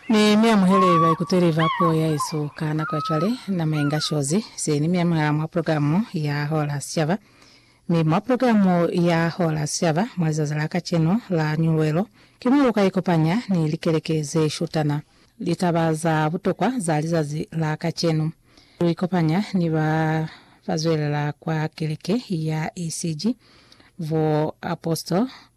Mi mi amuhele baikuteli ba puo ya hesu ka nako ya cwale. Nama inga shozi seni mi amuhela mwa progilamu ya Hola Sicaba. Mi mwa progilamu ya Hola Sicaba mwa lizazi la kacenu la Nyuluelo, ki mo lu ka ikopanya ni likeleke ze shutana litaba za butokwa za lizazi la kacenu. Lu ikopanya ni ba ba zwelela kwa keleke ya ECG, bo apostle,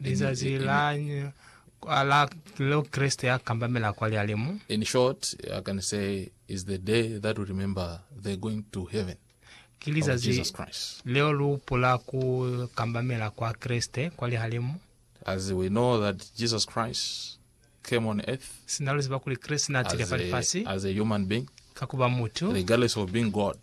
Lizazi la la leo Kreste ya kambamela kwa lialimu. In short, I can say is the day that we remember the going to heaven Ki of lizazi Jesus Christ. leo lu hupula ku kambamela kwa Kreste kwa lihalimu. As we know that Jesus Christ came on earth Sina luziba kuli Kreste na tile fa lifasi as a human being, ka ku ba mutu, regardless of being God.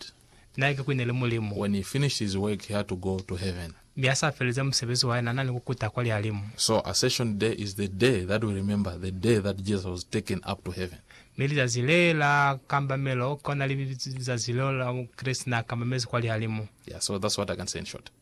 Na ike kuli ne li Mulimu. When he finished his work, he had to go to heaven. Mi ha sa feleza musebezi wa hae, na na ni ku kuta kwa lihalimu. So Ascension Day is the day that we remember the day that Jesus was taken up to heaven. Mi lizazi le la kambamelo ki lona li bizwa lizazi leo la mo Kreste na kambamezi kwa lihalimu. Yeah, so that's what I can say in short.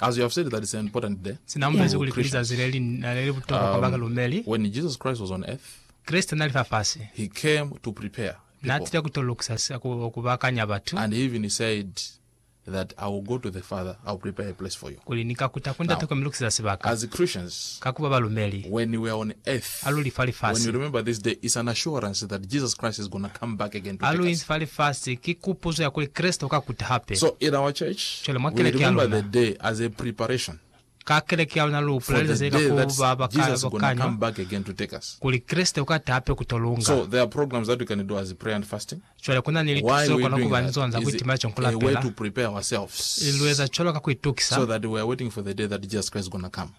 As you have said that it's an important day. Se na bulezi kuli ki lizazi le li na le li butokwa kwa ba um, balumeli. when Jesus Christ was on earth, Kreste na li fafasi, he came to prepare na people. tile ku to lukisa sa ku, ku bakanya batu, And he even said that I will go to the Father, I will prepare a place for you. kuli, Ni ka kuta ku Ndate Now, k'o mi lukiseza sibaka. As Christians, Ka ku ba balumeli. when we are on earth, a luli fa lifasi. A luli fa lifasi ki kupuzo ya kuli Kreste uka kuta hape. Cwale mwa keleke ya luna, ka keleke ya luna lu hupula lizazi le ka ku ba bakanywa kuli Kreste uka ta hape kuto lunga. Cwale kuna ni lituso ze lu kona kuba ni zona za kuitimela cwale ni kulapela. Ili lu eza cwalo ka kuitukisa.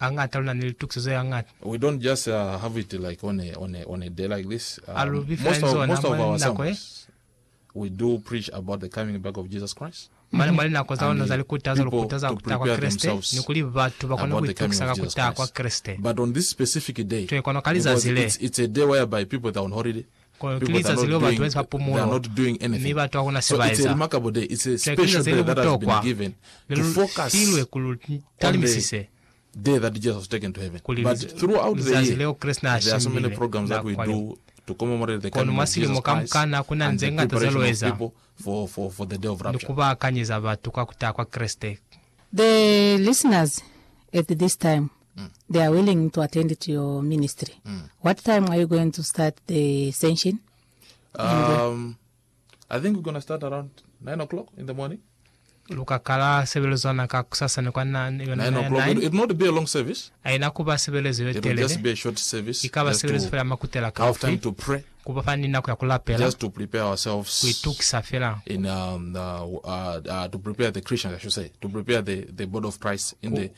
Hañata luna ni litukiso ze hañata. We don't just have it like on a on a on a day like this. Ha lu bi fela ni zona mwa linako ye. We do preach about the coming back of Jesus Christ. Mane mwa linako za luna za likutazo lu kutaza ku taha kwa Kreste ni kuli batu ba kone ku itukisa ka ku taha kwa Kreste. But on this specific day, twe kono ka lizazi le, because it's it's a day whereby people they're on holiday. Kono ki lizazi leo batu ba eziba pumulo, mi batu hakuna se ba eza. Cwale ki lizazi leli butokwa le lu filwe ku lu talimisise, kuli lizazi leo Kreste na shimbilwe na kwa yo. Kono mwa silimo kamukana kuna nze ngata ze lu eza, ni ku ba kanyeza batu ka ku taha kwa Kreste. The Listeners at This Time, They are willing to attend to your ministry. What time are you going to start the senshin? Um, I think we're gonna start around 9 o'clock in the morning. Lu ka kala sebelezo za na ka kusasa ni kwa na, yona 9 na ya o'clock. It, 9. it will not be a long service. Haina ku ba sebelezo ye It will just telele, be a short service. i ka ba just sebelezo to fela ya makutela have time kaufi, to pray, ku ba fa ni nako ya ku lapela, just to prepare ku ourselves itukisa fela. in um, uh, uh, uh, to prepare the Christians, I should say, to prepare the, the body of Christ in the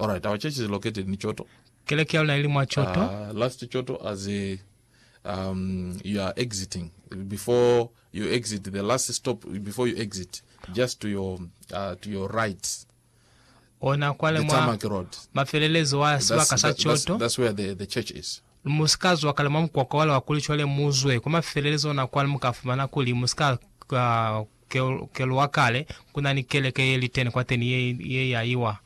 Alright, our church is located in Choto. Keleke ya luna ili mwa Choto. Uh, last Choto as a um, you are exiting before you exit the last stop before you exit just to your uh, to your right ona kwale mwa mafelelezo wa sibaka sa choto that's where the, the church is musikazi wa kale mwa mukwakwa wale wa kuli chwale muzwe kwa mafelelezo ona kwale mukafumana kuli musika uh, kelo wa kale kuna ni keleke ye litene kwa teni ye, ye yaiwa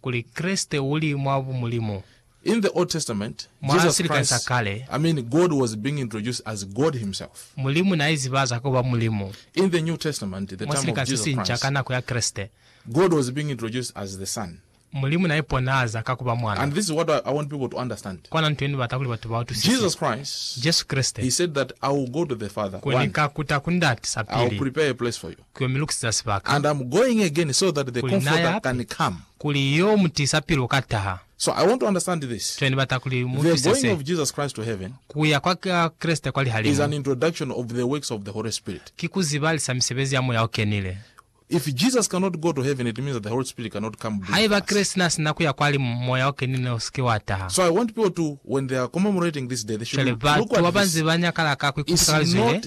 kuli Kreste uli mwa bumulimu. In the Old Testament, Mwa Jesus silikani sa Christ, kale, I mean God, was being introduced as God Himself. Mulimu na izibaza ku ba Mulimu. In the New Testament, the Mwa time of silikani se Jesus sinca ka Christ, nako ya Kreste, God was being introduced as the Son. Mulimu na iponahaza ka ku ba Mwana. And this is what I, I want people to understand. Kona nto ye ni bata kuli batu ba utwisise. Jesus Christ, Jesu Kreste, He said that I will go to the Father, kuli ni one, ka kuta ku Ndate sa I will pili, prepare a place for you. Ku yo mi lukisisa sibaka. And I'm going again so that the Ku li naya Comforter hape, can come. kuli i yo mu tiisa pilu ka taha. So I want to understand this, Cwale ni bata kuli mu the utwise going se, of Jesus Christ to heaven ku ya kwa Kreste kwa is lihalimu, an introduction of the works of the Holy Spirit. ki ku zibalisa misebezi ya Moya o Kenile. If Jesus cannot go to heaven, it means that the Holy Spirit cannot come be with Haiba us. Kreste na sina ku ya kwa limu, Moya o Kenile ne u si ke wa taha. So I want people to, when they are commemorating this day, they should Cwale, look batu at ba ba this. nze ba nyakala ka ku ikuta ka It's lizwi le, not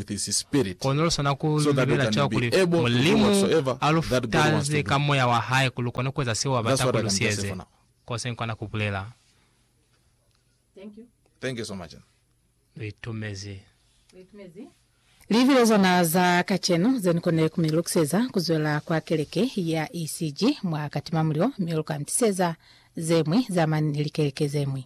Kono luswana ku lubela cwa kuli Mulimu a lu futaze ka moya wa hae kuli lukone kueza seo a bata kuli lusieze. Ko se nkona kubulela. Luitumezi. Livi le zona za kacenu ze ni konile ku mi lukiseza ku zwela kwa keleke ya ECG mwa Katimamulilo, mi lu ka ni tiseza ze ñwi za mani ni likeleke ze ñwi.